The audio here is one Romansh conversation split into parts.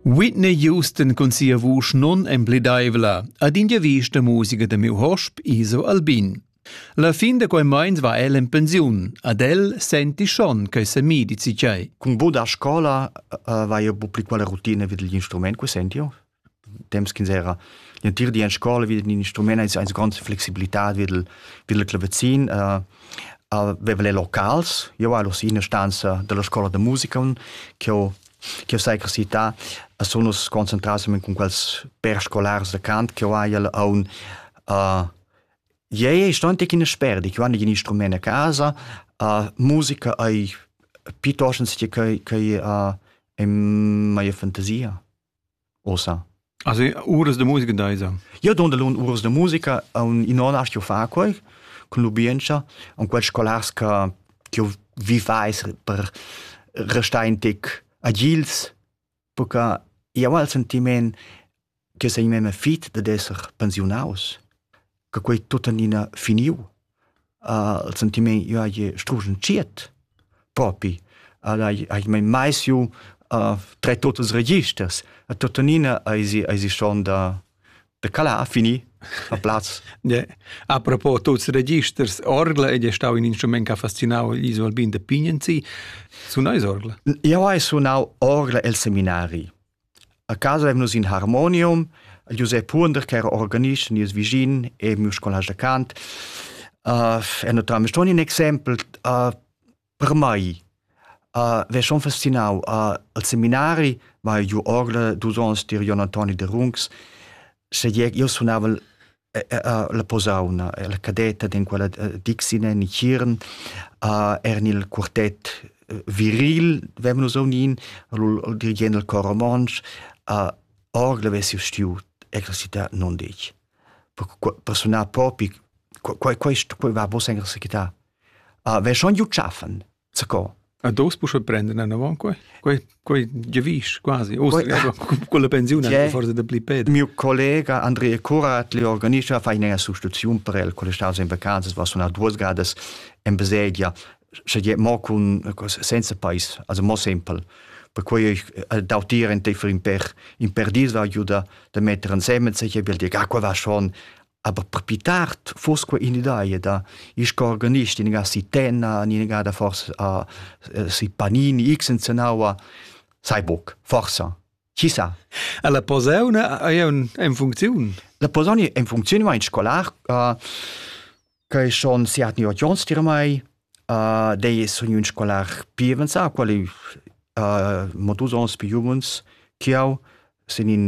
Whitney Houston cun sia vusch non empledaivla ad in vista musica da miu hosp Iso Albin. La fin da quei meins va el en pensiun. Ad el senti schon che se mi dici tgei. Cun bod a scola uh, vai eu bu pli quella routine vid gli instrument, que senti io? temps ch'ins era l'entir di en scola vid in instrument eis eis grande flexibilità vid il vid il clavazin uh, aveva le locals io ero in ina stanza della scuola da musica che ho che sai che città sono concentrati con quels per scolars da cant che ho hai a un uh, Iei sto antic in sperdi, che vanno in instrument a casa, uh, musica ai piuttosto che che che uh, è mai fantasia. Ossa. Also uras de musica deisa. Io don dalun uras de musica, in on astio far quei cun lubientscha, an quels scolars che io vivais per restar in tic agils, perché io ho il sentiment che sei meme fit dad esser pensiunaus. che quei tuttenina finiu. Uh, il sentiment io hai strugen ciet propi al hai hai mai mai siu uh, tre totes registers a tuttenina ai si ai si schon da de cala a fini a plaz yeah. a propos tots registers orgla ed è stau in instrument che ha fascinau gli Alpin de Pignenzi su nais orgla io hai sunau orgla el seminari A casa eivn nus in harmonium, Giusep Huonder ch'era organist nies vischin e miu scolast da cant. e naturalmein ston in exempel per mei. Ve schon fascinau. Al seminari vai giu orgla dus onns tier Jon Antoni de Rungs. Sche io sunavel la posauna, la cadetta in quella Dixine in Chiern, eran il quartett viril, vem nus unin, il dirigent del cor romontsch, orgel avessi stiu exercitar non dec. Per sunar propi, quei quei quei va vos exercitar. Ve schon giu schaffen. Zacò. A dos pusche prenden anavon quei? Quei quei giavisch quasi. Austria con la pensiun è forse da pli ped. Mio collega Andrea Curat li organischa fa ina sostituzione per el con le staus in vacanzas was una duas gadas in baselgia sche je mo con senza pais also mo simpel perquei ich äh, dautieren te für in per in per diesel aiuta da metter insieme se je will dir ah qua va schon Aber più tard foss quei in'idea da il organist in ga si Tenna, in ga da forse a si Panini, x in Zenaua, sai buc, forsa. Chi sa? La posauna è in funzione? La posauna è in funzione, ma in scolar, uh, che schon siat ni ot jons dir mai, Dei sun ün scolar pi avanzà, qual ei mo dus ons pi juvens ch'jeu, sin in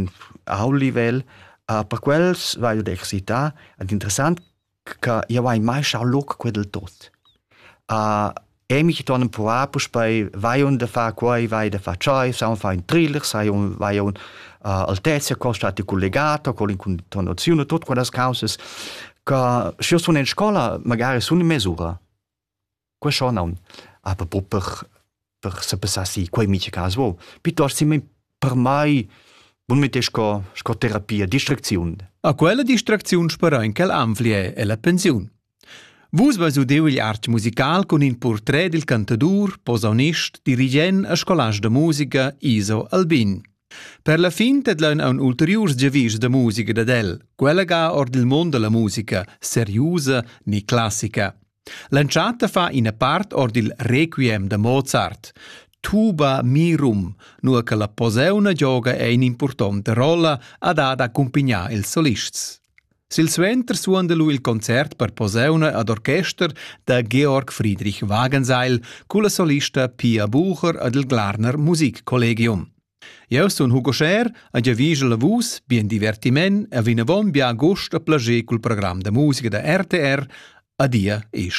ault livel. Per quels vaiu ad excitar ed interessant che jeu hai mai schau loc quei dil tot. E mi ton empruvar puspei, vai onn da far quei, vai da far tschei, saun far ün thriller, sai onn, vai aunc Altezia, col stati collegato, col incontonaziun e tut quellas causas. Ca schi sun in scola magari sun in mesura. Que scho naun. Aber pro per per se passassi quei miche cas vo. Piuttosto si per mai bun mette sco sco terapia distracziun. A quella distracziun sperò in quel anflie e la pensiun. Vus vas udeu il art musical cun in portret dil cantadur, posaunist, dirigent e scolast da musica Iso Albin. Per la fin tedlaun aun ulteriurs giavischs da musica dad el, quella ga or dil mund dalla musica, seriusa ni classica. L'entschatta fa ina part or dil requiem da Mozart. Tuba mirum, nur che la poseuna gioga è in importante rolla ad ad accumpignar ils solists. Silsuenter suonda lu il concert per posauna ad orchester da Georg Friedrich Wagenseil culla solista Pia Bucher ed il Glarner Musikkollegium. Jeu sun Hugo Scher e giavigel a vus bien divertiment e vinavon bia gust e plager cul program da musica da RTR. Adia e